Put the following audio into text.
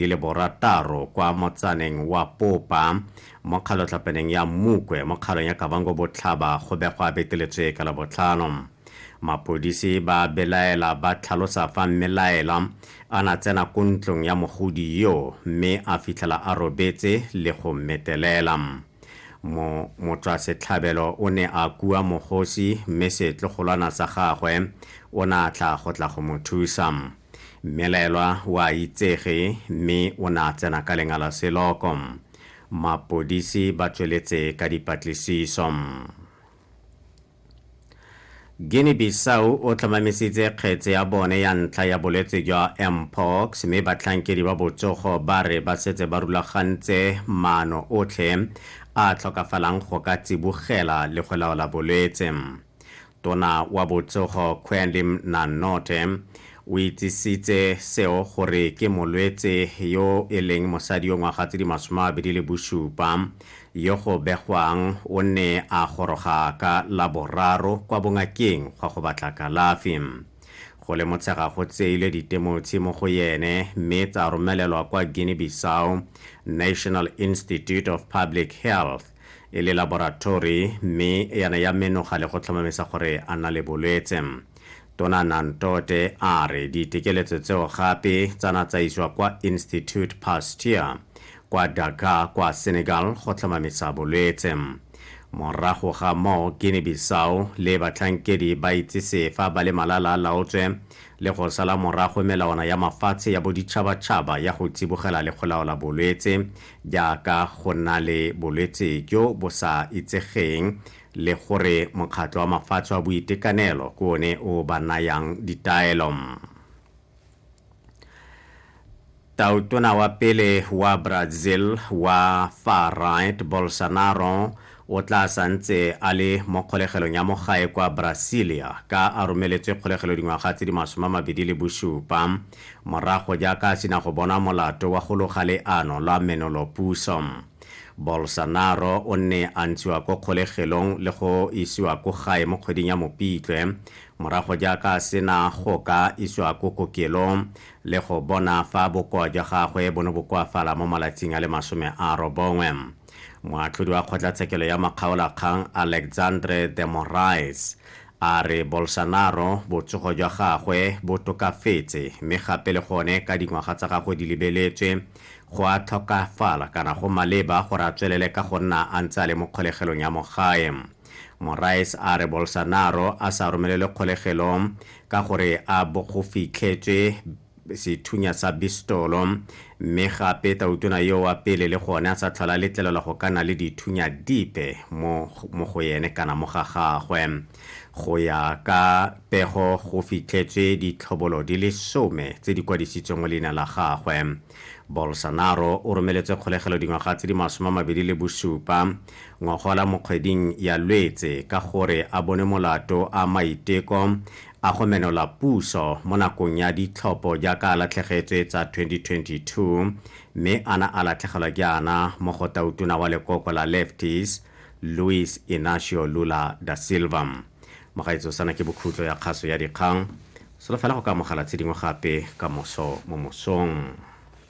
di le borataro kwa motsaneng wa popa mo kgalotlhapeneng ya mmukwe mo kgalong ya kabango botlhaba go begwa a beteletswe ka labotlhano mapodisi ba belaela ba tlhalosa fa mmelaela a na tsena ko ntlong ya mogodi yo mme a fitlhela a robetse le go mmetelela mo motswasetlhabelo o ne a kua mogosi mme setlogolwana sa gagwe o ne a tla go tla go mo thusa mmelaelwa o a itsege mme o ne a tsena ka lengala seloko mapodisi ba tsweletse ka dipatlisiso guinea bissau o tlhomamisitse kgetse ya bone ya ntlha ya bolwetse jwa mpox mme batlhankedi ba botsogo ba re ba setse ba rulagantse maano otlhe a tlhokafalang go ka tsibogela le go laola bolwetse Tona wa botsogo Quendim Nannote o itsisitse seo gore ke molwetse yo e leng mosadi yo ngwaga tse di masome a mabedi le bosupa yo go begwang o ne a goroga ka la boraro kwa bongakeng gwa go batla kalafi. Go le motshega go tseilwe ditemotshi mo go yene mme tsa romelelwa kwa Guinea-Bissau National Institute of Public Health e le laboratori mme yana ya menoga le go tlhomamisa gore a na le bolwetse. Tona Nantote a re ditekeletso tseo gape tsa na tsa iswa kwa Institute Pasteur kwa Dakar kwa Senegal go tlhomamisa bolwetse. Morago ga moo Guinea-Bissau le batlhankedi ba itsise fa ba le malala a laotswe le go sala morago melawana ya mafatshe ya boditšhabatšhaba ya go tsibogela le go laola bolwetse jaaka go nna le bolwetse jo bo sa itsegeng le gore Mokgatlho wa Mafatshe wa Boitekanelo ke one o ba nayang ditaelo. Tautona wa pele wa Brazil wa Far-Right Bolsonaro O tla sa ntse a le mo kgolegelong ya mo gae kwa Brasilia ka a romeletswe kgolegelo dingwaga tse di masome a mabedi le bosupa morago jaaka a sena go bonwa molato wa go loga leano lwa menolopuso. Bolsonaro o nne a ntshiwa ko kgolegelong le go isiwa ko gae mo kgweding ya Mopitlwe morago jaaka a sena go ka isiwa ko kokelong le go bona fa bokoa jwa gagwe bo ne bo koafala mo malatsing a le masome a robongwe. Moatlhodi wa kgotlatshekelo ya makgaolakgang Alexandre de Moraes a re Bolsonaro botsogo jwa gagwe bo tokafetse mme gape le gone ka dingwaga tsa gagwe di lebeletswe go a tlhokafala kana go maleba gore a tswelele ka go nna a ntse a le mo kgolegelong ya mogae. Moraes a re Bolsonaro a sa romelelwe kgolegelong ka gore a bo go fitlhetswe sethunya sa bistolo, mme gape tautona yo wa pele le gone a sa tlhola a letlelelwa go ka na le dithunya dipe mo mo go ene kana mo ga gagwe. Go ya ka pego go fitlhetswe ditlhobolo di le some tse di kwadisitsweng mo leina la gagwe. Bolsonaro o romeletswe kgolegelo dingwaga tse di masome a mabedi le bosupa ngogola mo kgweding ya Lwetse ka gore a bone molato a maiteko A go menola puso mo nakong ya ditlhopho jaaka a latlhegetswe tsa 2022 mme a na a latlhegelwa jaana mo go tautona wa lekoko la Lefties, Luiz Inacio Lula da Silva. Mogaetsho sana ke bokhutlo ya kgaso ya dikgang. Solofela go ka amogela tshedingwe gape kamoso mo mosong.